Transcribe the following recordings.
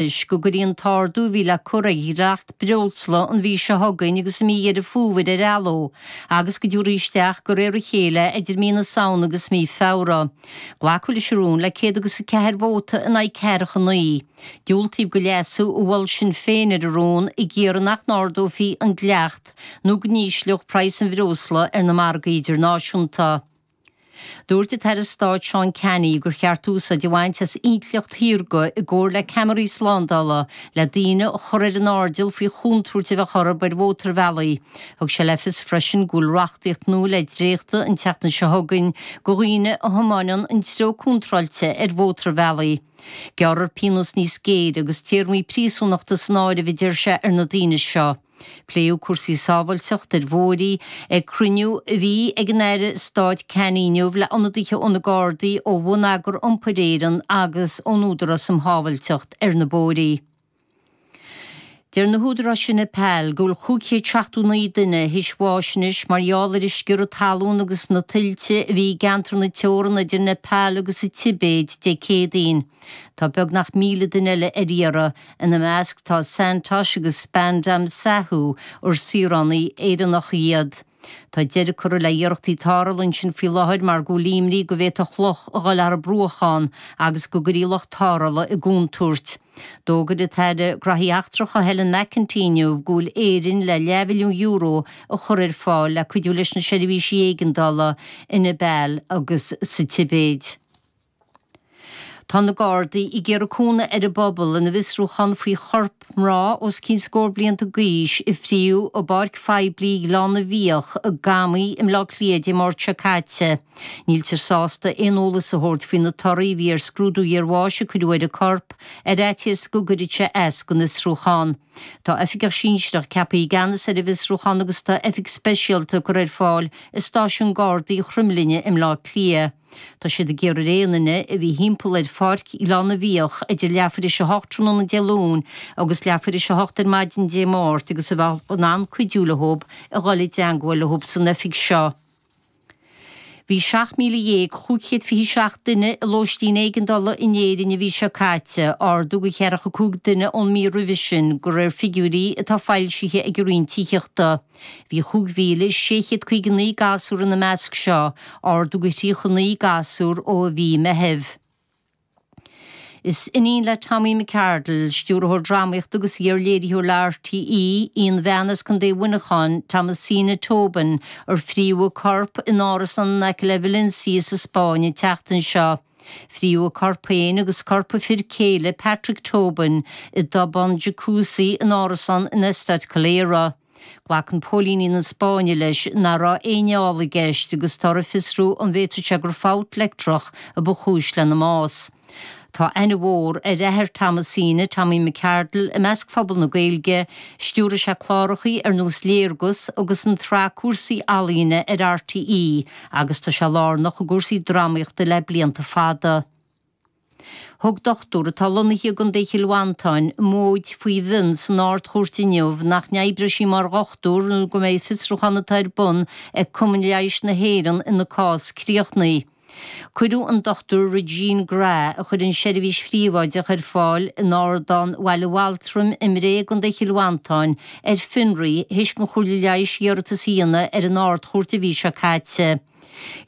Toisc go gcuirfí an t-ardú a bhí le cur ar dhleacht breosla an mhí seo chugainn agus i mí Dheireadh Fómhair ar athló agus go dtabharfaí isteach de réir a chéile idir mí na Samhna agus mí Feabhra. Glacadh leis an rún le céad agus a ceathair vóta in aghaidh ceathracha a naoi. Diúltaíodh do leasú a mhol Sinn Féin ar an rún ag iarraidh nach n-ardófaí an dleacht nó go n-ísleodh praghas an bhreosla ar na margaí idirnáisiúnta. Dúirt an tAire Stáit Seán Canney gur cheart úsáid a bhaint as intleacht shaorga i gcomhar le ceamaraí slándála le daoine a chur ar an airdeall faoi chontúirt a bheadh orthu ar mhótarbhealaí. Thug sé le fios freisin go bhfuil reachtaíocht nua le dréachtadh an tseachtain seo chugainn do dhaoine a thiomáineann an treo contráilte ar mhótarbhealaí. Gearrfar pionós níos géire agus téarmaí príosúnachta san áireamh a deir sé ar na daoine seo. Pléadh cúrsaí sábhailteacht ar bhóithre ag cruinniú a bhí ag an Aire Stáit Canney inniu le ionadaithe ó na Gardaí, ó Bhonneagar Iompair Éireann agus ón Údarás um Shábhailteacht ar na Bóithre. Deir na húdaráis sa Nepal go bhfuil 579 duine a bhfuil tásc a mbáis anois mar gheall ar an sciorradh talún agus na tuilte a bhí i gceantar na teorann idir Nepal agus an Tibéid Dé Céadaoin. Tá beagnach 1,000 duine eile ar iarraidh. Ina measc tá Santosh agus Spandam Sahu, ar saoránaigh Éireannacha iad. Tá deireadh curtha le hiarrachtaí tarrthála ansin faoi láthair mar go bhfuil imní go bhféadfadh loch a dhul thar bruach ann agus go gcuirfí lucht tarrthála i gcontúirt. D'fhógair an tAire Gnóthaí Eachtracha Helen McEntee inniu go bhfuil Éirinn le leathmhilliún euro a chur ar fáil le cuidiú leis na seirbhísí éigeandála i Neipeal agus sa Tibéid. Tá na Gardaí ag iarraidh cúnamh ar an bpobal ina bhfiosrúchán faoi chorp mná os cionn scór blianta d'aois a fríothadh i bpáirc phoiblí Ghleann na bhFiach i gCamaigh i mBleá Cliath Dé Máirt seo caite. Níltear sásta aon eolas a thabhairt faoi na torthaí a bhí ar scrúdú iarbháis a cuireadh ar an gcorp, ar fhaitíos go gcuirfeadh sé as don fhiosrúchán. Tá oifigeach sinsearach ceaptha i gceannas ar an bhfiosrúchán agus tá oifig speisialta curtha ar fáil i Stáisiún Gardaí Chroimlinne i mBleá Cliath. Tá siad ag iarraidh aon duine a bhí thimpeall ar Pháirc Ghleann na bhFiach idir leath tar éis a hocht tráthnóna Dé Luain agus leath tar éis a hocht ar maidin Dé Máirt agus a bheadh in ann cuidiú leothub a dhul i dteangmháil leothub san oifig seo. Bhí 17,527 duine i lóistín éigeandála in Éirinn an mhí seo caite, ardú de cheathracha cúig duine ón mí roimhe sin, de réir figiúirí atá foilsithe ag an Roinn Tithíochta. Bhí 5,659 gasúr ina measc seo, ardú de 39 gasúr ó mhí Meithimh. Is iníon le Tommy McArdle, stiúrthóir drámaíochta agus iar-léiritheoir le RTÉ, í an bhean as Co. Mhuineacháin, Thomasina Tobin, ar fríothadh a corp in árasán in aice le Valencia sa Spáinn an tseachtain seo. Frítheadh a corp féin agus corp a fir céile, Patrick Tobin, i dtobán jacuzzi in árasán in Costa Calera. Glacann póilíní na Spáinne leis nach raibh aon fheall i gceist agus táthar ag fiosrú an bhféadfadh sé gur fabht leictreach a ba chúis lena mbás. Tá aithne mhór ar athair Thomasine, Tommy McArdle, i measc phobal na Gaeilge. Stiúraigh sé cláracha ar nós Léargas agus an tsraith Cúrsaí Ealaíne ar RTÉ. agus tá sé lárnach i gcúrsaí drámaíochta le blianta fada. Thug dochtúir atá lonnaithe i gContae Chill Mhantáin móid faoi mhionn san Ard-Chúirt inniu nach n-oibreoidh sí mar dhochtúir nó go mbeidh fiosrúchán atá ar bun ag Cumann Leighis na hÉireann ina cás críochnaithe. Cuireadh an Dr Regine Grae, a chuireann seirbhís phríobháideach ar fáil in Ardán Bhaile Altram i mBré i gContae Chill Mhantáin, ar fionraí th'éis don Chomhairle Leighis iarratas a dhéanamh ar an Ard-Chúirt an mhí seo caite.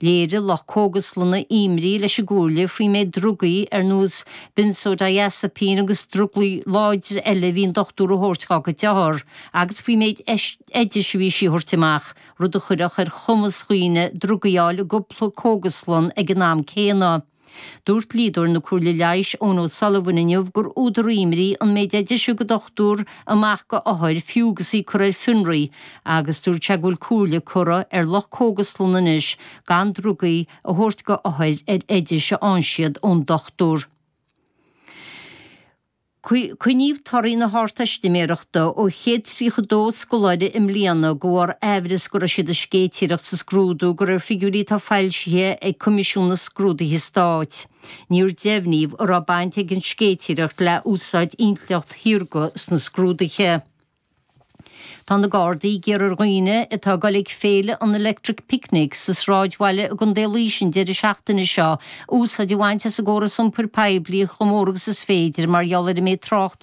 Léirigh lucht cógaslanna imní leis an gComhairle faoi méid drugaí ar nós benzodiazepine agus drugaí láidre eile a bhí an dochtúir a thabhairt do gach othar agus faoi méid oidis a bhí sí a thabhairt amach, rud a chuirfeadh ar chumas daoine drugaí a fháil i gcúpla cógaslann ag an am céanna. Dúirt dlíodóir na Comhairle Leighis, Eoin O'Sullivan, inniu gur údar imní an méid oideas a thug an dochtúir amach go othair fiú agus í curtha ar fionraí agus dúirt sé go bhfuil comhairle curtha ar lucht cógaslann anois gan drugaí a thabhairt go othair ar oidis a fhaigheann siad ón dochtúir. Coinníodh torthaí na hArdteistiméireachta ó chéad tríocha dó scoláire i mbliana go bharr amhras go raibh siad ag séitéireacht sa scrúdú de réir figiúirí atá foilsithe ag Coimisiún na Scrúduithe Stáit. Níor deimhníodh an raibh baint ag an séitéireacht le húsáid intleacht shaorga sna scrúduithe. Tá na Gardaí ag iarraidh ar dhaoine atá ag dul ag Féile an Electric Picnic sa Sráidbhaile i gContae Laois an deireadh seachtaine seo úsáid a bhaint as an gcóras iompair poiblí chomh mór agus is féidir mar gheall ar an méid tráchta